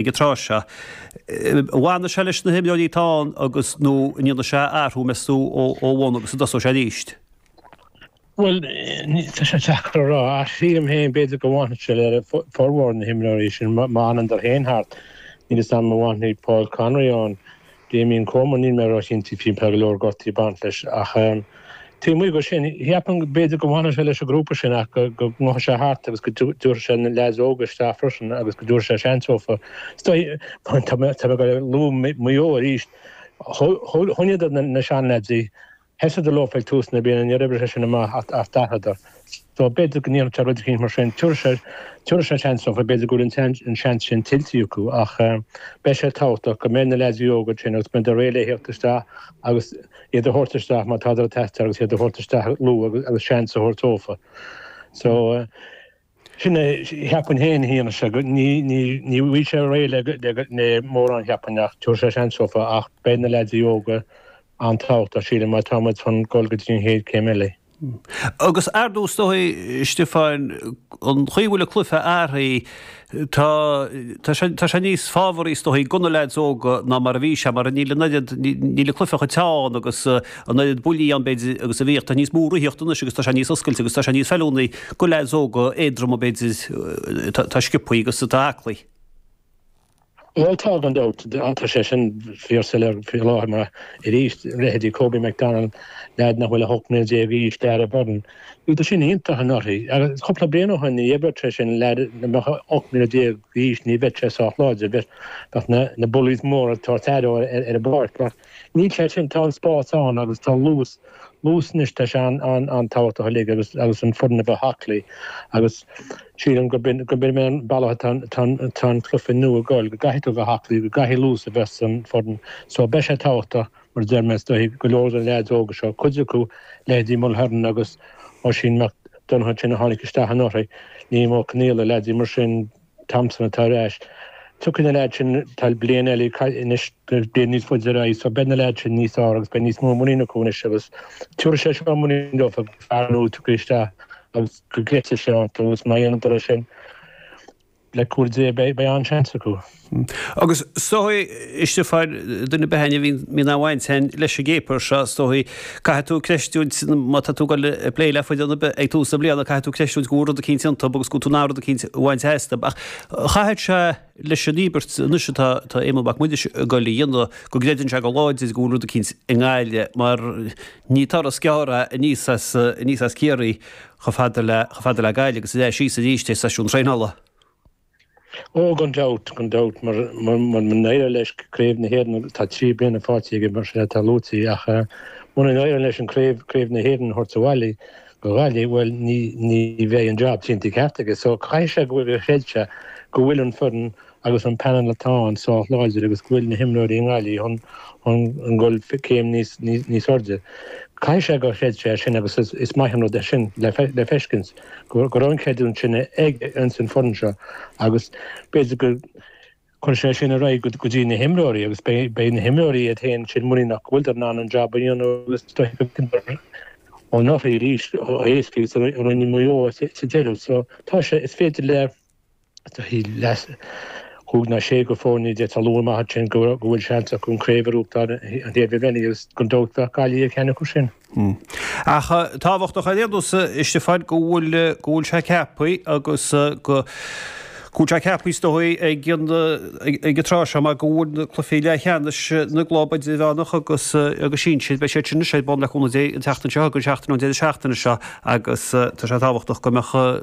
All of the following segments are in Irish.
ag an tráth seo. An bhfanfaidh sé leis na himreoirí atá ann agus, nó an ndéanfaidh sé athrú, meastú, ó bhun agus an dtosóidh sé arís? Bhuel, tá sé deacair a rá ach sílim féin, b'fhéidir, go bhfanfaidh sé le formhór na himreoirí sin má fhanann dar ann thart. Níl fhios a'm an bhfanfaidh Paul Conroy ann. Damien Comer, níl mé róchinnte fiú, tá go leor gortaithe ag baint leis, ach taobh amuigh de sin, cheapfainn go b'fhéidir go bhfanfadh sé leis an ghrúpa sin ach go ngabhfadh sé thart agus go dtabharfadh sé na leaids óga isteach freisin agus go dtabharfadh sé seans dófa. Tá mé ag luadh Maigh Eo arís, choinníodar na seanleaids sheas siad leofa ag tús na bliana, níor oibrigh sé sin amach ach d'athraíodar. So, b'fhéidir go ndéanfadh sé rud eicínt mar sin. Tabharfaidh sé, tabharfaidh sé seans dófa, b'fhéidir go bhfuil an, an seans sin tuillte acu, ach beidh sé tábhachtach go mbeidh na leaids óga ansin agus go mbeidh siad réidh le thíocht isteach agus iad a thabhairt isteach má tádar ag teastáil agus iad a thabhairt isteach luath agus seans a thabhairt dófa. So. Sin é, cheapfainn féin, a Shéamasa, go, ní, ní, ní bhfaighidh sé réidh le, le, le mórán, cheapfainn, ach tabharfaidh sé seans dófa, ach beidh na leaids óga an-tábhachtach, sílim, má tá muid chun dul go dtí an chéad céim eile. Agus ar ndóigh, is dóichí, Stiofáin, an chaoi a bhfuil an cluiche athraithe, tá, tá sé, tá sé níos fabhraí, is dóichí, do na leaids óga ná mar a bhí sé, mar níl an oiread, níl an cluiche chomh teann agus an oiread buillí ann, b'fhéidir, agus a bhíodh, tá níos mó reathaíocht anois agus tá sé níos oscailte agus tá sé níos feiliúnaí. Do leaids óga éadroma b'fhéidir. Atá sciobtha agus atá aclaí. Bhuel, tá gan dabht. Tá sé sin fíor soiléir faoi láthair mar, arís, leithéidí Kobe McDonald, leaid nach bhfuil ach 18 mbliana d'aois, Darragh Beirne. Tá siad sin iontach i mbliana. Agus cúpla bliain ó shin ní bheadh sé sin, leaid a mbeadh 18 mbliana d'aois, ní bheadh sé sách láidir. Bheadh na bullies móra ag tabhairt aire dó ar an bpáirc. Níl sé sin, tá an spás ann agus tá luas, luas anois, tá sé an-tábhachtach uilig agus agus an foireann a bheith aclaí agus sílim gurb in, gurb in an bealach atá an, tá an, tá an cluiche nua ag goil, go gcaithfidh tú a bheith aclaí, go gcaithfidh luas a bheith san foireann. So beidh sé tábhachtach, mar a deir mé, is dóichí go leor de na leaids óga seo, cuid acu, leithéidí Mulhern agus Oisín Mac Donncha ansin a tháinig isteach anuraidh, Liam Ó Conghaile, leaids mar sin, Thompson atá ar ais. Tiocfaidh na leaids sin, tá bliain eile anois, beidh siad níos faide ar aghaidh so beidh na leaids sin níos fearr agus beidh níos mó muinín acu anois agus tiúrfaidh sé seo muinín leofa gur fear nua a thiocfaidh isteach agus go gcreidfidh sé iontu agus má dhéanann dar é sin, le cúnamh Dé, beidh an-seans acu. Agus is dóigh, Stiofáin, do na bealaí a bhíonn á bhaint féin leis an gcéaper seo, is dóigh, Caithfidh tú creistiúint, má tá tú ag plé le foireann ar bith ag tús na bliana, caithfidh tú creistiúint go bhfuil rud eicínt iontub agus go bhfuil tú in ann rud eicínt a bhaint astub. Ach chaithfeadh sé, leis an íobairt anois atá Éamonn Mac Muiris ag goil a dhéanamh, go gcreideann sé go láidir go bhfuil rud eicínt i nGaillimh, mar ní turas gearr é aníos as, aníos as Ciarraí chomh fada le, chomh fada le Gaillimh agus ansin síos aríst ag seisiúin traenála. Ó, gan dabht, gan dabht, mura n-éireoidh leis craobh na hÉireann, tá trí bliana faighte aige, mar sin, atá luaite, ach mura n-éireoidh leis an craobh, craobh na hÉireann a thabhairt abhaile go Gaillimh, bhuel, ní bheidh an jab déanta ceart aige. So, caithfidh sé gur chreid sé, go bhfuil an foireann agus an panel atá ann sách láidir agus go bhfuil na himreoirí i nGaillimh chun dhul céim níos airde. Caithfidh sé gur chreid sé é sin agus is maith an rud é sin le feiscint. go raibh an creidiúint sin aige insan foireann seo agus b'fhéidir gur chuir sé sin ar aghaidh go dtí na himreoirí agus beidh na himreoirí iad féin muiníneach go bhfuiltear in ann an jab a dhéanamh agus droichead an urraí arís a éascaíodh sa roinn Mhaigh Eo sa deireadh so tá sé, is féidir le. Thug na sé foirne atá amuigh ansin go bhfuil seans acu an chraobh a bhuachaint agus gan dabht bheadh Gaillimh ar ceann acu sin. Ach tá sé tábhachtach ar aon nós, Stiofáin, go bhfuil go bhfuil sé ceaptha agus go go bhfuil sé ceaptha is dóigh ag an ag an tráth seo mar go bhfuil na cluichí leathcheannais na gclub idirmheánach agus agus sinsir beidh siad sin ar bun le cúnamh Dé an tseachtain seo agus an seachtain an deireadh seachtaine seo agus tá sé tábhachtach go mbeadh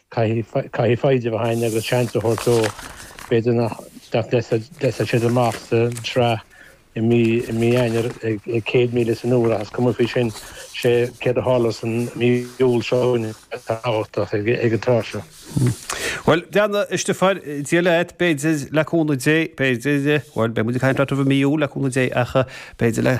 Caithfidh foighid a bheith ann agus seans a thabhairt dó. B'fhéidir nach dtiocfaidh siad amach sa tsraith i mí Eanáir ag céad míle san uair ach is cuma faoi sin. Sé céard a tharlós san mí Iúil seo chugainn atá tábhachtach ag an tráth seo. Bhuel, déanta, a Stiofáin, Dia leat, b'fhéidir, le cúnamh Dé, b'fhéidir, bhuel, beidh muid ag caint leat roimh an mí Iúil, le cúnamh Dé, ach b'fhéidir le.